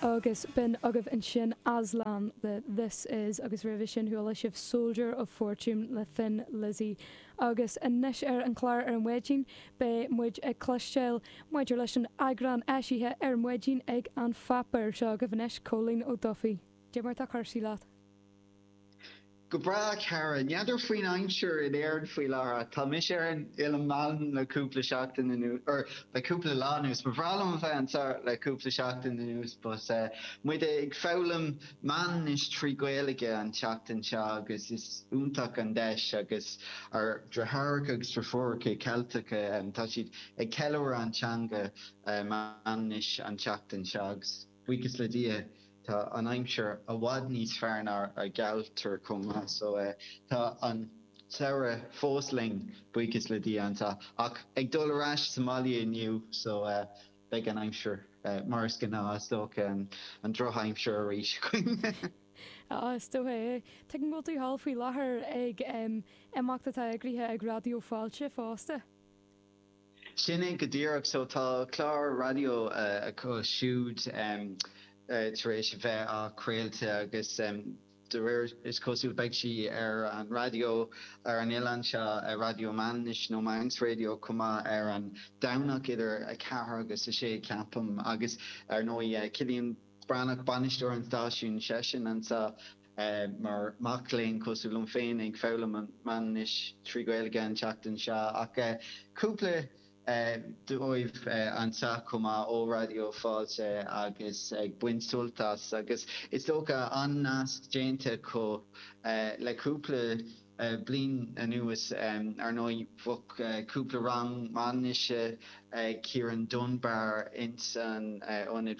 Agus b'in agaibh ansin Aslan le This Is agus roimhe sin chuala sibh Soldier of Fortune le Thin Lizzy. Agus anois ar an chlár ar maidin beidh muid ag cloisteáil maidir leis an eagrán eisithe ar maidin ag An Pháipéar. Seo agaibh anois Colm Ó Dubhthaigh. Cad é mar atá cúrsaí leat. Go breá, a chara. N'fheadar faoin aimsir in Éirinn faoi láthair. Tá mise ar an Oileán Mhanann le cúpla seachtain anuas, or le cúpla lá anuas. Ba bhreá liom a bheith anseo le cúpla seachtain anuas but táimid ag foghlaim Manainnis trí Ghaeilge an tseachtain seo agus is iontach an deis agus ár ndeartháireacha agus deirfiúracha Ceilteacha tá siad ag ceiliúradh an teanga Manainnis an tseachtain seo agus Buíochas le Dia tá an aimsir i bhfad níos fearr ná mar a gealladh chomh maith so tá an Samhradh fós linn, buíochas le Dia anso ach ag dul ar ais abhaile inniu so beidh an aimsir mar is gnáth is dócha, an drochaimsir arís againn. Ah is dócha é. Tuigim go bhfuil tú thall faoi láthair ag imeacht atá eagraithe ag Raidió Fáilte fosta. Sin é go díreach. So tá clár raidió acu siúd tar éis a bheith á craolta agus de réir is cosúil beidh sí ar an raidió ar an oileán seo, Raidió Manainnis nó Manx Radio chomh maith ar an Domhnach idir 4 agus 6 ceapaim. Agus ar ndóigh Cillian Breatnach, bainisteoir an stáisiúin seisean anseo. Mar mac léinn cosúil liom féin ag foghlaim an Manainnis trí Gaeilge an tseachtain seo ach cúpla dóibh anseo chomh maith ó Raidió Fáilte agus ag baint sult as agus is dócha an-nasc déanta acu le cúpla bliain anuas. Ar ndóigh bhí cúpla rang Manainnise ag Ciarán Dunbar ins an ionad.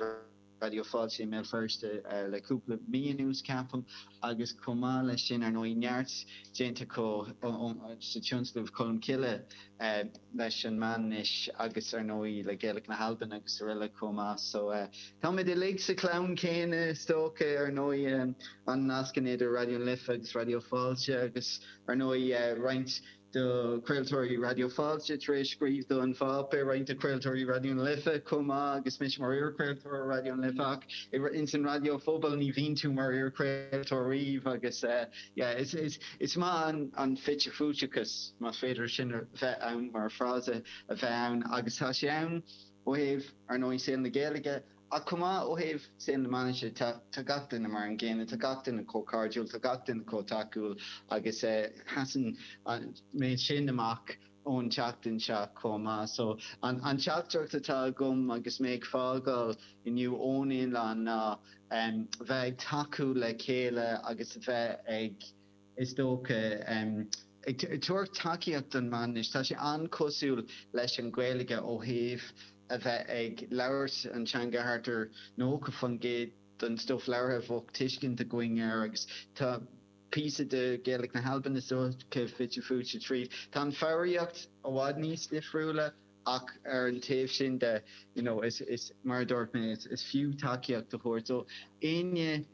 Raidió Fáilte i mBéal Feirste le cúpla mí anuas, ceapaim, agus chomh maith leis sin, ar ndóigh, neart déanta acu sa tionscnamh Colmcille leis an Manainnis agus, ar ndóigh, le Gàidhlig na hAlban agus araile chomh maith. So, táimid uilig sa chlann céanna, is dócha. Ar ndóigh, an-nascanna idir Raidió na Life agus Raidió Fáilte agus, ar ndóigh, roinnt de chraoltóirí Raidió Fáilte tar éis scríobh do An Pháipéar, roinnt de chraoltóirí Raidió na Life chomh maith agus mise mar iarchraoltóir Raidió na Life ach ins an raidió pobail ní bhíonn tú mar iarchraoltóir riamh agus is maith an fite-fuaiteachas, más féidir sin a bheith ann mar frása, a bheith ann agus tá sé ann ó thaobh, ar ndóigh, saol na Gaeilge. Ach chomh maith ó thaobh na Manainnise de, tá gach duine mar an gcéanna, tá gach duine chomh cairdiúil, tá gach duine chomh tacúil agus sheas an méid sin amach ón tseachtain seo chomh maith. So an teachtaireacht atá agam agus mé ag fágáil inniu ón oileán ná bheith ag tacú le chéile agus a bheith ag. is dócha, ag tabhairt tacaíocht don Mhanainnis. Tá sé an-chosúil leis an Ghaeilge ó thaobh a bheith ag labhairt an teanga thart ar 90% den stuif labhartha a bheadh tuiscint againn air agus tá píosa de Ghaeilge na hAlban is dócha fite fuaite tríd. Tá an foghraíocht i bhfad níos difriúla ach ar an taobh sin de you know mar a dúirt mé is fiú tacaíocht a thabhairt do éinne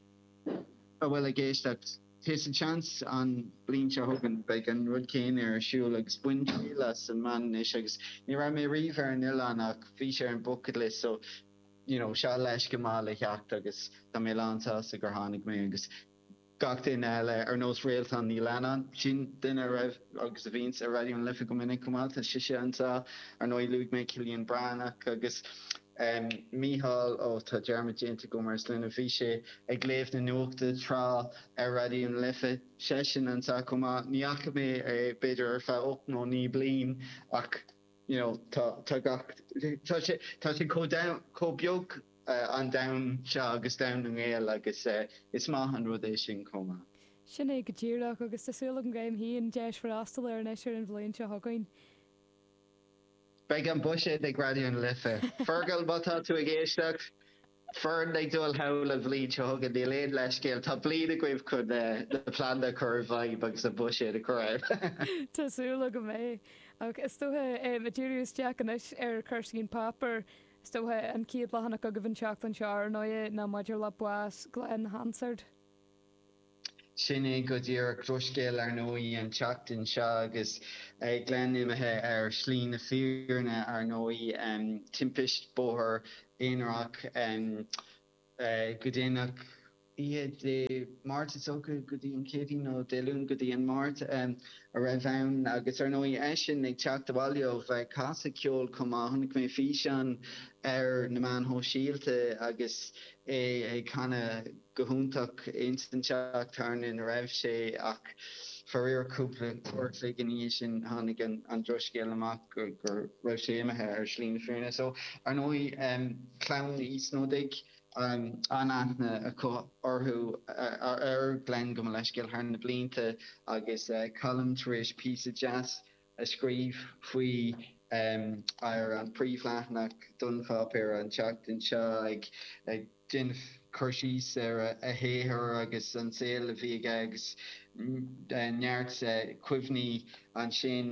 a bhfuil ag éisteacht. Tá seans, an bliain seo chugainn beidh an rud céanna ar siúl agus bain triail as an Manainnis agus ní raibh mé riamh ar an oileán ach bhí sé ar an bucket list so you know seo leithscéal maith le theacht agus tá mé lán sásta gur tháinig mé agus gach duine eile ar nós Réaltán Ní Leannáin, sin duine a raibh agus a bhíonns ar Raidió na Life go minic chomh maith, tá sise anseo, ar ndóigh luaigh mé Cillian Breathnach agus. Mícheál, Ó tá dearmad déanta agam ar a shloinne, bhí sé ag léamh na nuachta tráth ar Raidió na Life, seisean anso chomh maith, ní fhaca mé é b'fhéidir ar feadh ocht nó naoi bliain ach you know tá tá gach, tá sé, tá sé chomh domhain, chomh beag an domhan seo agus domhan na nGael agus is maith an rud é sin chomh maith. Sin é go díreach agus tá súil agam go mbeidh an deis freastal air anois ar an bhliain seo chugainn. Beidh an buiséad ag Raidió na Life. Fergal, má tá tú ag éisteacht, foireann ag dul sall an bhliain seo chugainn, níl aon leithscéal, tá bliain agaibh chun na pleananna a chur i bhfeidhm agus an buiséad a chur ann. Tá súil agam go mbeidh. Ach is dócha, em, díriú isteach anois ar chúrsaí An Páipéar, is dócha an chéad leathanach agaibh an tseachtain seo, ar ndóigh, ná maidir le bás Glen Hansard. Sin é go díreach drochscéal, ar ndóigh, an tseachtain seo agus Glen imithe ar shlí na fírinne, ar ndóigh. Timpist bóthair aonaránach go déanach oíche Dé Máirt, is dócha, go dtí an Chéadaoin, nó Dé Luain go dtí an Máirt, a raibh ann. Agus, ar ndóigh, eisean ag teacht abhaile ó bheith ag casadh ceoil chomh maith. Chonaic mé físeán ar na meáin shóisialta agus é ag canadh. go hiontach ins an teach tábhairne ina raibh sé ach faraor cúpla uair a chloig ina dhiaidh sin tháinig an drochscéal amach go raibh sé imithe ar shlí na fírinne. So ar ndóigh clann Uí Snodaigh an-aithne acu orthu ar Glen gabh mo leithscéal thar na blianta agus Colm tar éis píosa deas a scríobh faoi ar an príomhleathanach den pháipéar an tseachtain seo ag déanamh cur síos ar a shaothar agus an saol a bhí aige agus neart cuimhní ansin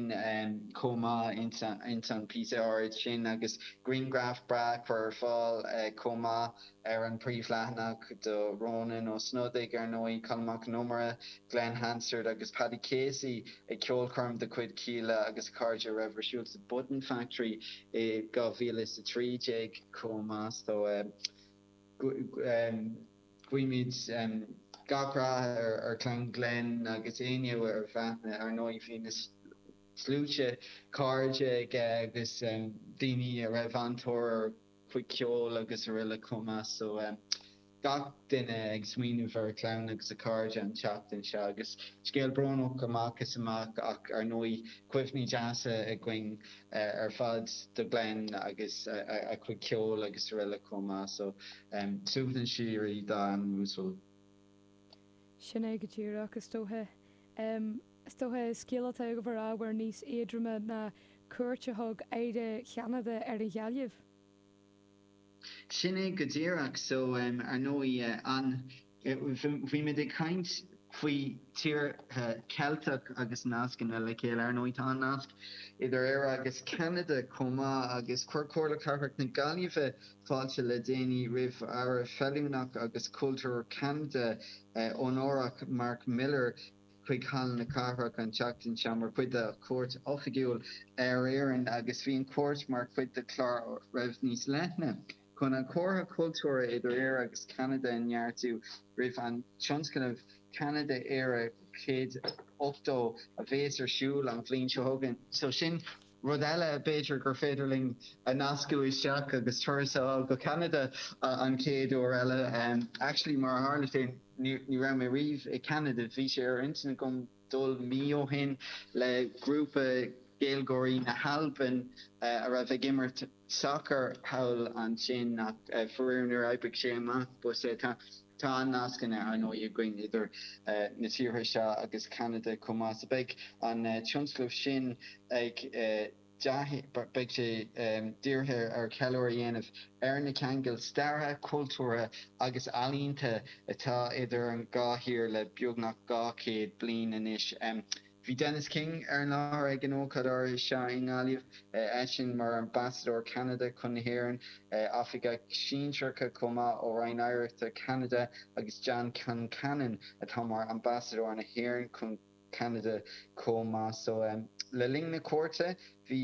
chomh maith ins an píosa áirid sin agus grianghraf breá curtha ar fáil chomh maith. Ar an bpríomhleathanach de Rónán Ó Snodaigh, ar ndóigh, Colm Mac an Iomaire, Glen Hansard agus Paddy Casey ag ceolchoirm de chuid Kíla agus a chairde a raibh ar siúl sa Button Factory i 2013 chomh maith. So, guímid gach rath ar chlann Glen agus éinne ar aithne. Ar ndóigh, bhí na sluaite cairde aige agus daoine a raibh an-tóir ar. chuid ceoil agus araile chomh maith so gach duine ag smaoineamh ar a chlann agus a chairde an tseachtain seo agus scéal brónach amach is amach ach ar ndóigh cuimhní deasa againn ar fad de Glen agus a chuid ceoil agus araile chomh maith so suaimhneas síoraí dá anam uasal. Sin é go díreach is dócha. Is dócha scéal atá ábhar níos éadroime ná cuairt a thug Aire Cheanada ar an Ghaillimh. Sin é go díreach. So, ar ndóigh, an, bhí muid ag caint faoi tíortha Ceilteach agus nascanna le chéile. Ar ndóigh, tá an nasc idir Éire agus Ceanada chomh maith agus chuir Comhairle Cathrach na Gaillimhe fáilte le déanaí roimh Aire Féiniúlachta agus Cultúir Cheanada, Onórach, Marc Miller. chuig Halla na Cathrach an tseachtain seo mar chuid de chuairt oifigiúil ar Éirinn agus bhí an chuairt mar chuid de chlár a raibh níos leithne chun an comhar cultúrtha idir Éire agus Ceanada a neartú roimh an tionscnamh Ceanada-Éire 180 a bhéas ar siúl an bhliain seo chugainn. So sin. Rud eile b'fhéidir gur féidir linn a nascadh isteach agus turas a fháil go Ceanada an chéad uair eile. Actually mar a tharla sé ní raibh mé riamh i gCeanada. Bhí sé ar intinn agam dul mí ó shin le grúpa Gaeilgeoirí na hAlban a raibh ag imirt sacair thall ansin ach faraor níor oibrigh sé amach. Tá an-nascanna, ar ndóigh, againn idir na tíortha seo agus Ceanada chomh maith, so beidh an tionscnamh sin ag beidh sé dírithe ar cheiliúradh a dhéanamh ar na ceangail staire, cultúrtha agus ealaíonta atá idir an dhá thír le beagnach dhá chéad bliain anois. Bhí Dennis King ar an láthair ag an ócáid áirithe seo i nGaillimh, eisean mar Ambasadóir Cheanada chun na hÉireann, oifigigh shinsearacha chomh maith ó Roinn Oidhreachta Cheanada agus John Concannon atá mar Ambasadóir na hÉireann chun Ceanada chomh maith. So le linn na cuairte bhí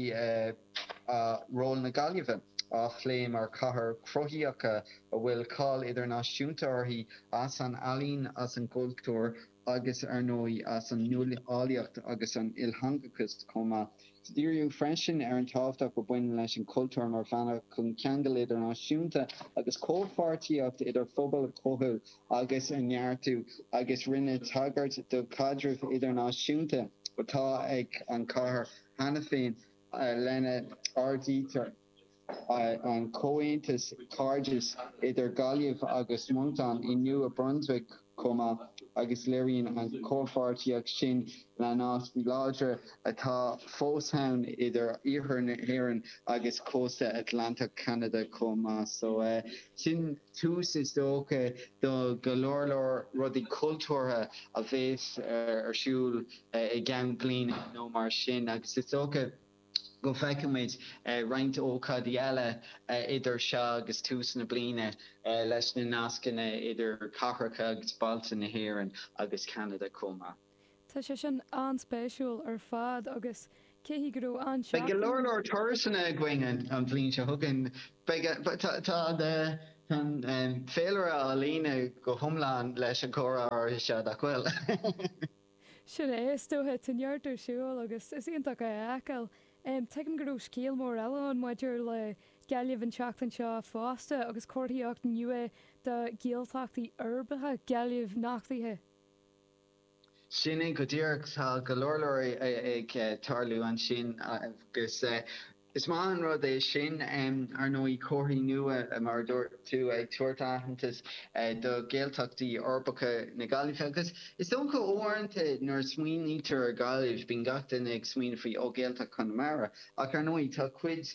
ról na Gaillimhe á phlé mar chathair chruthaíoch a bhfuil cáil idirnáisiúnta uirthi as an ealaín, as an gcultúr, agus, ar ndóigh, as an nuálaíocht agus an iltheangachas chomh maith. Díríodh freisin ar an tábhacht a bhaineann leis an chultúr mar bhealach chun ceangail idirnáisiúnta agus comhpháirtíocht idir phobail a chothú agus a neartú agus rinneadh tagairt do chaidreamh idirnáisiúnta atá ag an chathair cheana féin lena n-áirítear an comhaontas cairdis idir Gaillimh agus Moncton i Nua Brunswick chomh maith agus léiríonn an chomhpháirtíocht sin na naisc láidre atá fós ann idir Iarthar na hÉireann agus cósta Atlantach Cheanada chomh maith. So sin tús is dócha do go leor leor rudaí cultúrtha a bhéas ar siúl i gceann bliana nó mar sin agus is dócha, go bhfeicfimid roinnt ócáidí eile idir seo agus tús na bliana leis na nascanna idir cathracha agus bailte na hÉireann agus Ceanada chomh maith. Tá sé sin an-spéisiúil ar fad agus beidh go leor leor turasanna againn an bhliain seo chugainn. Tá an féilire á líonadh go hiomlán leis an gcomhrá áirithe seo nach bhfuil? Sin é, is dóigh. Tá neart ar siúl agus is iontach é a fheiceáil. Tuigim go raibh scéal mór eile ann maidir le Gaillimh an tseachtain seo fosta agus comharthaíocht nua do Ghaeltachtaí uirbeacha na Gaillimhe nochtaithe. Sin é go díreach. Tá go leor leor ag tarlú ansin agus. Is maith an rud é sin, ar ndóigh, comharthaí nua, mar a dúirt tú, ag tabhairt aitheantas do Ghaeltachtaí uirbeacha na Gaillimhe agus is dócha uaireanta nuair a smaoinítear ar Ghaillimh bíonn gach duine ag smaoineamh faoi, ó, Ghaeltacht Chonamara ach ar ndóigh tá cuid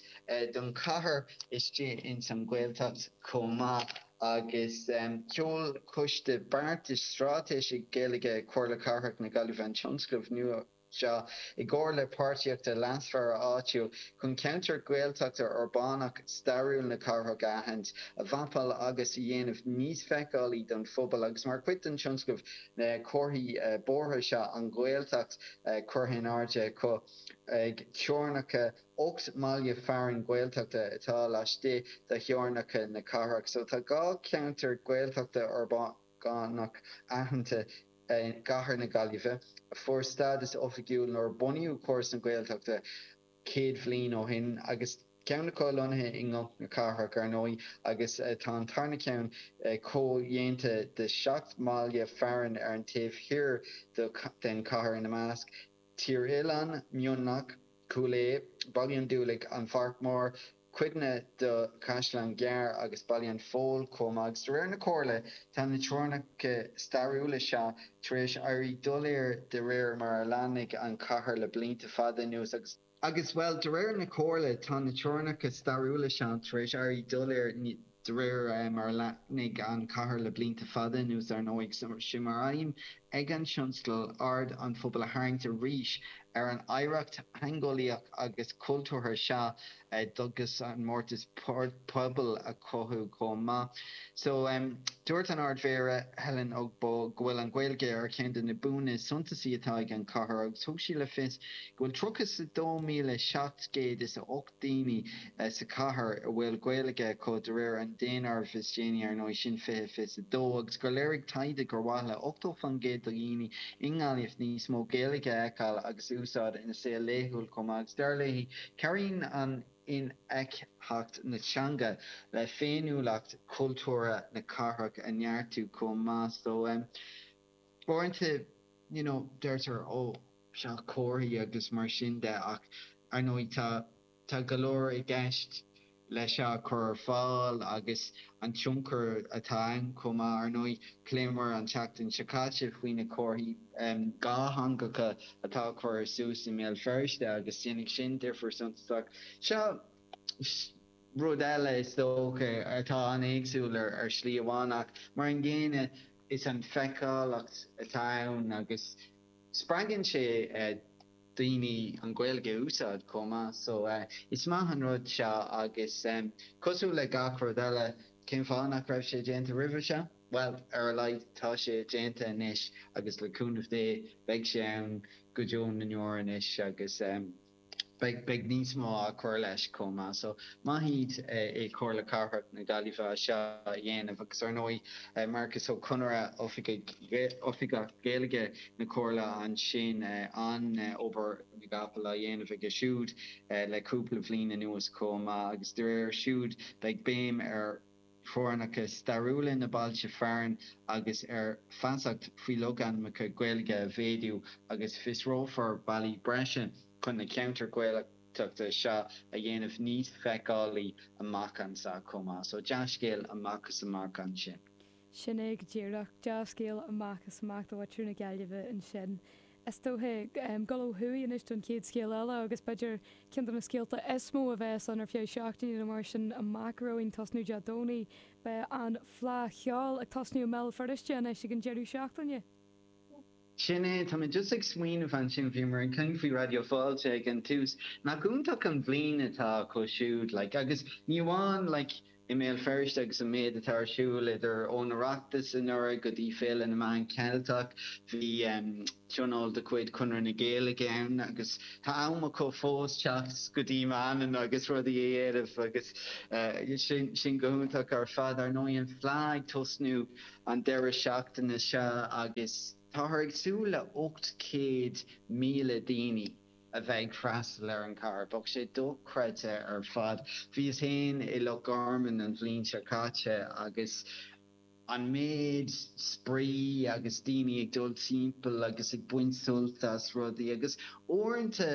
don chathair istigh ins an Ghaeltacht chomh maith agus sheol Coiste Beartais Straitéisigh Gaeilge Chomhairle Cathrach na Gaillimhe an tionscnamh nua seo, i gcomhar le páirtithe leasmhara áitiúil, chun ceantair Ghaeltachta uirbeacha stairiúil na cathrach a aithint, a mhapáil agus a dhéanamh níos feiceálaí don phobal agus mar chuid den tionscnamh tá comharthaí bóithre seo, An Ghaeltacht curtha in airde acu ag teorainneacha ocht mbaile fearainn Gaeltachta atá laistigh de theorainneacha na cathrach. So tá dhá cheantar Gaeltachta uirbeach. dhá cheantar aitheanta i gCathair na Gaillimhe, a fuair stádas oifigiúil nuair a bunaíodh Córas na Gaeltachta céad bhliain ó shin, agus ceann acu lonnaithe i gCnoc na Cathrach, ar ndóigh, agus tá an tarna ceann comhdhéanta de sheacht mbaile fearainn ar an taobh thoir den chathair, ina measc, Tír Oileáin, Mionlach, Cúil Each, Baile an Dúlaigh, An Pháirc Mhór, cuid den Chaisleán Gearr agus Baile an Phoill chomh maith, agus de réir na Comhairle tá na teorainneacha stairiúla seo tar éis éirí doiléir de réir mar a leathnaigh an chathair le blianta fada anuas agus, bhuel, de réir na Comhairle tá na teorainneacha stairiúla seo tar éis éirí doiléir. De réir mar a leathnaigh an chathair le blianta fada anuas, ar ndóigh, is é mar aidhm ag an tionscadal aird an phobail a tharraingt arís ar an oidhreacht theangeolaíoch agus chultúrtha seo agus an mórtas pobail a chothú chomh maith. So, dúirt an Ardmhéara, Helen Ogbu, go bhfuil an Ghaeilge ar cheann de na buanna suntasacha atá ag an chathair agus thug sí le fios go bhfuil 32,708. daoine sa chathair a bhfuil Gaeilge acu, de réir an daonáirimh is déanaí, ar ndóigh, sin fiche fiche a dó, agus gur léirigh taighde gur mhaith le 80 faoin gcéad de dhaoine i nGaillimh níos mó Gaeilge a fheiceáil agus a úsáid ina saol laethúil chomh maith, agus dar léi, cabhraíonn an infheictheacht na teanga le féiniúlacht chultúrtha na cathrach a neartú chomh maith. So. Uaireanta, you know, deirtear, ó, seo comharthaí agus mar sin de ach, ar ndóigh, tá, tá go leor i gceist le seo a chur ar fáil agus an tionchar atá ann chomh maith. Ar ndóigh, phléamar an tseachtain seo caite faoi na comharthaí dátheangacha atá á chur suas i mBéal Feirste agus déanfaidh sin difear suntasach. Seo rud eile, is dócha, atá an-éagsúil ar shlí amháin ach, mar an gcéanna, Is an feiceálacht atá ann agus spreagann sé daoine an Ghaeilge a úsáid chomh maith so is maith an rud seo agus cosúil le gach rud eile cén fáth nach raibh sé déanta roimhe seo? Bhuel ar a laghad tá sé déanta anois agus le cúnamh Dé beidh sé ann go deo na ndeor anois agus. beidh, beidh níos mó á cur leis chomh maith. So maith iad i Comhairle Cathrach na Gaillimhe as seo a dhéanamh agus ar ndóigh Marcus Ó Conaire, Oifigeach Gaeilge na Comhairle ansin, an obair na gcapall á dhéanamh aige siúd le cúpla bhliain anuas chomh maith agus de réir siúd beidh béim ar theorainneacha stairiúla na bailte fearainn agus ar feasacht faoi logainmneacha Gaeilge a mhéadú agus fiosrófar bealaí breise chun na ceantair Ghaeltachta seo a dhéanamh níos feiceálaí amach anso chomh maith. So dea-scéal amach is amach ansin. Sin é go díreach. Dea-scéal amach is amach do mhuintir na Gaillimhe ansin. is dóiche, dul ó thuaidh anois don chéad scéal eile agus b'fhéidir ceann de na scéalta is mó a bheas ann ar feadh seachtaine nó mar sin amach romhainn, ag tosnú Dé Domhnaigh. Beidh an Fleadh Cheoil ag tosnú i mBéal Feirste anois ag an deireadh seachtaine. Sin é, tá mé just ag smaoineamh ansin, bhíomar ag caint faoi Raidió Fáilte ag an tús, nach iontach an bhliain atá acu siúd like agus ní amháin like, i mBéal Feirste agus an méid atá ar siúl idir an Oireachtas anuraidh go dtí Féile na Meán Ceilteacha, bhí tionól de chuid Chonradh na Gaeilge ann agus tá am acu fós teacht go dtí Manainn agus rudaí a dhéanamh agus sin go hiontach ar fad. Ar ndóigh an Fleá ag tosnú an deireadh seachtaine seo agus táthar ag súil le 800,000 daoine. a bheith ag freastal ar an gcathair. Bheadh sé dochreidte ar fad. Bhíos fhéin i Loch Garman an bhliain seo caite agus an méid spraoi agus daoine ag dul timpeall agus ag baint sult as rudaí agus uaireanta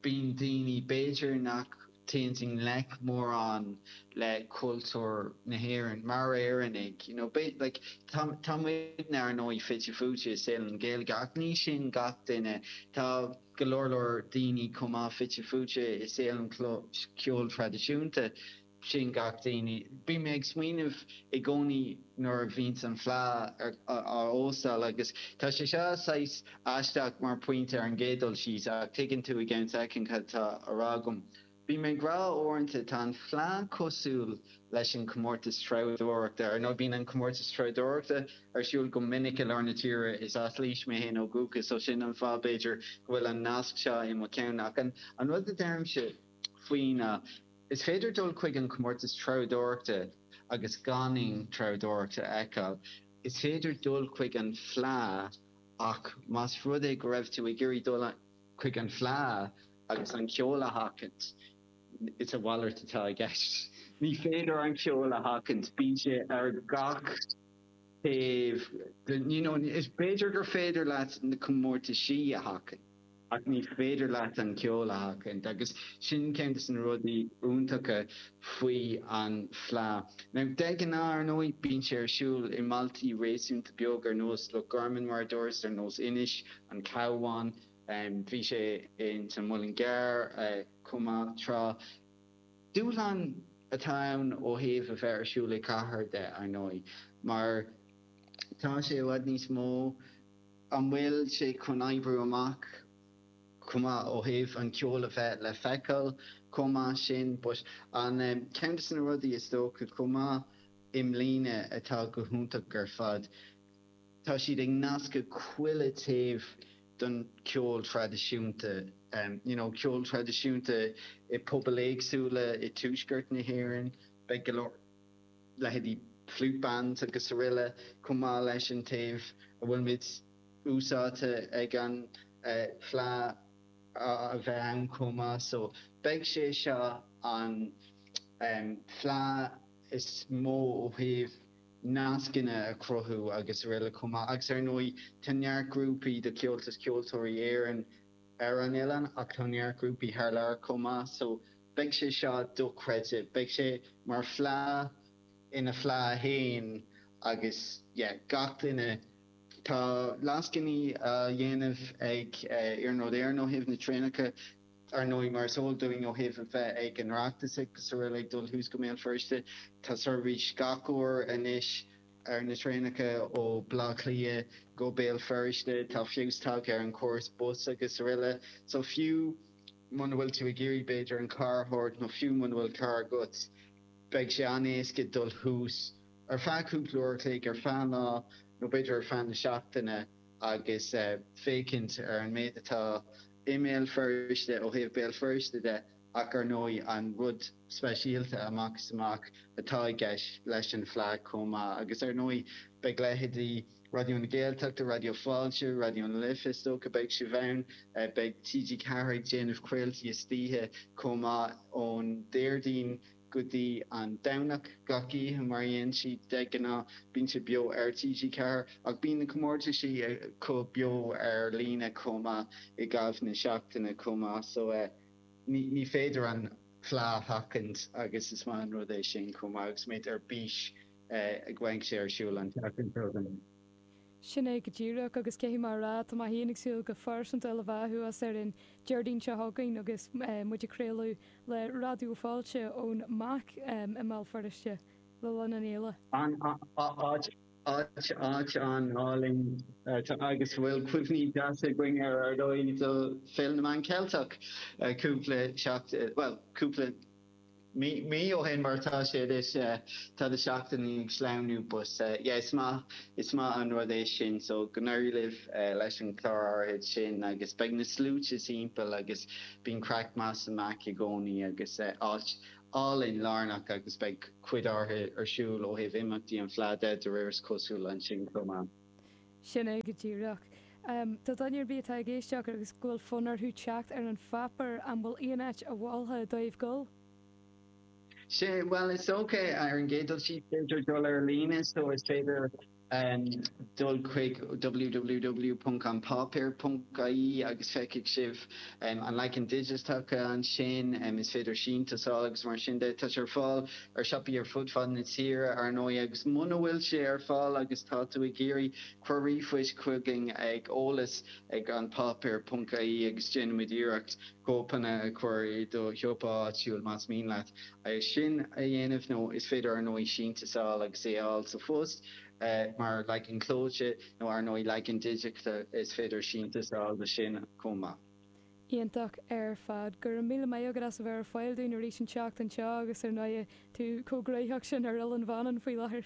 bíonn daoine b'fhéidir nach Téann i ngleic mórán le cultúr na hÉireann mar Éireannaigh. You know, b'fhéidir, like, tá, tá muidne ar ndóigh fite fuaite i saol an Ghaeilge ach ní sin gach duine. Tá go leor leor daoine chomh maith fite fuaite i saol an cheoil thraidisiúnta. Ní sin gach duine. Bhí mé ag smaoineamh i gcónaí nuair a bhíonn an fleadh á, á, á óstáil agus tá sé seo saghas Aisteach mar phointe ar an gcéad dul síos, ach tuigeann tú i gceann soicind cad tá á rá agam. Bím ag rá uaireanta, tá an fleadh cosúil leis an chomórtas treabhdóireachta. Ar ndóigh bíonn an comórtas treabhdóireachta ar siúl go minic i lár na tíre. Is as Laois mé fhéin ó dhúchas so sin an fáth b'fhéidir go bhfuil an nasc seo i mo cheann. Ach an rud a deirimse faoi ná, is féidir dul chuig an chomórtas treabhdóireachta agus gan aon treabhdóireacht a fheiceáil. Is féidir dul chuig an fleadh. Ach más rud é go raibh tú ag iarraidh dul chuig an fleá agus an ceol a sheachaint, is a mhalairt atá i gceist. Ní féidir an ceol a sheachaint, bíonn sé ar gach taobh, you know. B'fhéidir gur féidir leat na comórtaisí a sheachaint. Ach ní féidir leat an ceol a sheachaint agus sin ceann de na rudaí iontacha faoi an Fleadh. Now de ghnáth ar ndóigh bíonn sé ar siúl i mbailtí réasúnta beag ar nós Loch Garman mar a dúras, ar nós Inis, An Cabhán, bhí sé ins an Muileann gCearr chomh maith tráth. Dúshlán atá ann ó thaobh a bheith ar siúl i gcathair de ar ndóigh mar tá sé i bhfad níos mó, An bhfuil sé chun oibriú amach chomh maith ó thaobh an ceol a bheith le feiceáil chomh maith sin ba ceann de na rudaí is dócha chomh maith i mbliana atá go hiontach ar fad tá siad ag nascadh chuile taobh don cheol traidisiúnta you know ceol traidisiúnta i pobail éagsúla i Tuaisceart na hÉireann beidh go leor leithéidí Flute Bands agus araile chomh maith leis an taobh a bhfuil muid úsáidte ag an Fleadh a bheith ann chomh maith so beidh sé seo an Fleadh is mó ó thaobh nascanna a chruthú agus araile chomh maith agus ar ndóigh tá neart grúpaí de Chomhaltas Ceoltóirí Éireann ar an oileán ach tá neart grúpaí thar lear chomh maith so Beidh sé seo dochreidte. Beidh sé mar Fleadh ina Fleadh féin agus yeah gach duine, tá lascainí á dhéanamh ag Iarnród Éireann ó thaobh na traenacha ar ndóigh mar is eol dúinn ó thaobh a bheith ag an Oireachtas agus araile ag dul thuas go mBéal Feirste. Tá seirbhís gach uair anois ar na traenacha ó Bleá Cliath go Béal Feirste. Tá feabhas tagtha ar an chóras bus agus araile. So fiú. Muna bhfuil tú ag iarraidh b'fhéidir an carr a thabhairt nó fiú muna bhfuil carr agat beidh sé an-éasca dul thuas ar feadh cúpla uair a chloig, ar feadh an lá nó b'fhéidir ar feadh na seachtaine agus féachaint ar an méid atá i mBéal Feirste ó thaobh Béal Feirste de ach ar ndóigh an rud speisialta amach is amach atá i gceist leis an Fleadh chomh maith agus ar ndóigh beidh leithéidí Raidió na Gaeltachta, Raidió Fáilte, Raidió na Life is dócha, beidh sibh ann. Beidh TG4 ag déanamh craoltaí istoíche chomh maith ón Déardaoin go dtí an Domhnach gach oíche mar a dhéanann siad de ghnáth. Bíonn sé beo ar TG4 ach bíonn na comórtaisí acu beo ar líne chomh maith i gcaitheamh na seachtaine chomh maith so ní féidir an Fleadh a sheachaint agus is maith an rud é sin chomh maith agus muid ar bís go mbeidh sé ar siúl an tseachtain seo chugainn. Sin é go díreach agus caithfidh mé a rá tá mé féin ag súil go pearsanta le bheith thuas ar an Déardaoin seo chugainn agus muid ag craoladh le Raidió Fáilte ón MAC i mBéal Feirste le linn an fhéile. An áit Áit, áit an-álainn tá agus bhfuil cuimhní deasa againn ar ár dóigh do Pheil na mBan Ceilteach cúpla seachtain, bhuel cúpla mí, mí ó shin mar tá sé anois, tá na seachtainí ag sleamhnú but yeah is maith, is maith an rud é sin so go n-éirí libh leis an chlár áirid sin agus beidh na sluaite timpeall agus bíonn craic maith amach i gcónaí agus áit, álainn, lárnach agus beidh cuid áirithe ar siúl ó thaobh imeachtaí an phlé de, de réir is cosúil, ansin chomh maith. Sin é go díreach. Do dhuine ar bith atá ag éisteacht agus go bhfuil fonn orthu teacht ar an pháipéar, an bhfuil aon áit a mholfá dóibh dul? Sea, bhuel, is dócha, ar an gcéad dul síos, b'fhéidir dul ar líne, so is féidir. Em dul chuig www.anpáipéar.ie agus feicfidh sibh an leagan digiteacha ansin. Is féidir síntiús a fháil agus mar sin de. Tá sé ar fáil ar siopaí ar fud fad na tíre, ar ndóigh, agus muna bhfuil sé ar fáil agus tá tú ag iarraidh, cuir ríomhphost chugainn ag eolas ag anpáipéar.ie agus déanfaimid iarracht cóipeanna a chur i do shiopa áitiúil más mian leat. é sin a dhéanamh nó is féidir, ar ndóigh, síntiús a fháil agus é a fháil sa phost mar leagan clóite nó, ar ndóigh, leagan digiteach, is féidir síntiús a fháil do sin chomh maith. Iontach ar fad. Go raibh míle maith agat as a bheith ar fáil dúinn arís an tseachtain seo agus, ar ndóigh, tú chomh gnoitheach sin ar Oileán Mhanann faoi láthair.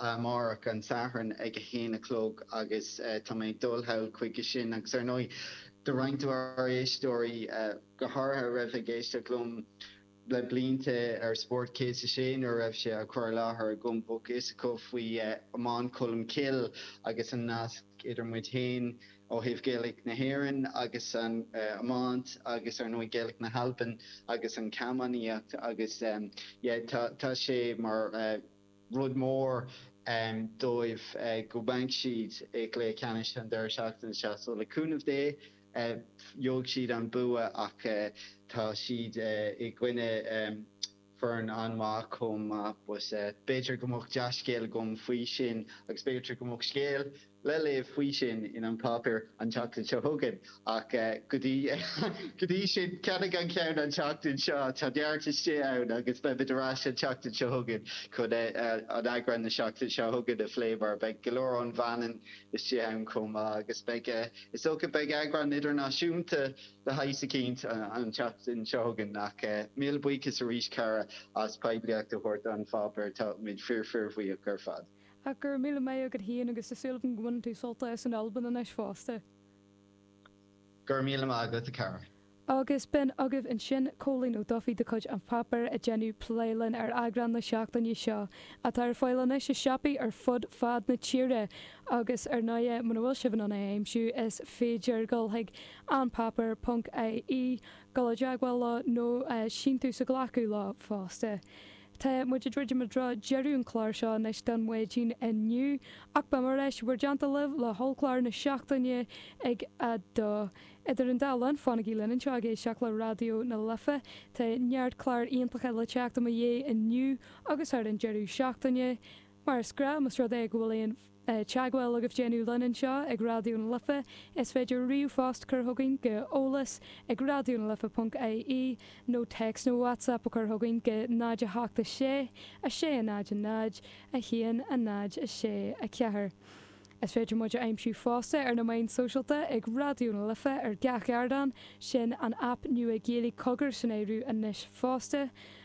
amárach an Satharn ag a haon a chlog agus tá mé ag dul sall chuige sin agus ar ndóigh do roinnt de bhur éisteoirí go háirithe a raibh ag éisteacht liom le blianta ar Spórt 106 nuair a raibh sé á chur i láthair agam, but is eol dóibh, faoi Iomáint Cholm Cill agus an nasc idir muid féin ó thaobh Ghaeilge na hÉireann agus an iomáint agus ar ndóigh Gaeilge na hAlban agus an camánaíocht agus yeah tá sé mar. rud mór dóibh go mbeidh siad i gcluiche ceannais an deireadh seachtaine seo so le cúnamh Dé gheobhaidh siad an bua ach tá siad i gcoinne foireann an-mhaith chomh maith but b'fhéidir go mbeadh dea-scéal agam faoi sin agus b'fhéidir go mbeadh scéal le léamh faoi sin in An Páipéar an tseachtain seo chugainn ach go dtí sin ceannaigh an ceann an tseachtain seo, tá neart istigh ann agus beimid ar ais an tseachtain seo chugainn chun an eagrán na seachtaine seo chugainn a phlé mar beidh go leor ón Mhanainn istigh ann chomh maith agus beidh, is dócha, beidh eagrán idirnáisiúnta de shaghas eicínt an tseachtain seo chugainn ach míle buíochas arís Cara as poiblíocht a thabhairt don pháipéar táimid fíor fíor bhuíoch ar fad. Ach go raibh míle maith agat a Chóilín agus tá súil agam go mbaineann tú sult as an Albain anois fosta. Go raibh míle maith agat a chara. Agus b'in agaibh ansin Cóilín Ó Dufaí de chuid An Páipéar ag déanamh plé linn ar eagrán na seachtaine seo, atá ar fáil anois i siopaí ar fud fad na tíre. Agus ar ndóighe, muna bhfuil sibh in ann é a aimsiú, is féidir dul chuig anpáipéar ponc ie, dul i dteagmháil leo nó síntiús a ghlacadh leo fosta. Tá muid ag druidim i dtreo deireadh an clár seo anois don mhaidin inniu, ach beimid ar ais i bhur dteannta libh le hollchlár na seachtaine ag a dó. Idir an dá linn, fanaigí linn anseo ag éisteacht le Raidió na Life. Tá neart cláir iontacha le teacht i mo dhiaidh inniu agus thar an deireadh seachtaine. Mar is gnáth, más rud é go bhfuil aon teagmháil agaibh le déanamh linn anseo ag Raidió na Life, is féidir ríomhphost a chur chugainn go eolas ag raidionalife ponc ie nó text nó whatsapp a chur chugainn go 0 8 6 6 0 0 1 0 6 4. Is féidir muid a aimsiú fosta ar na meáin sóisialta ag Raidió na Life ar gach ardán, sin an aip nua Gaeilge Cogar san áireamh anois fosta.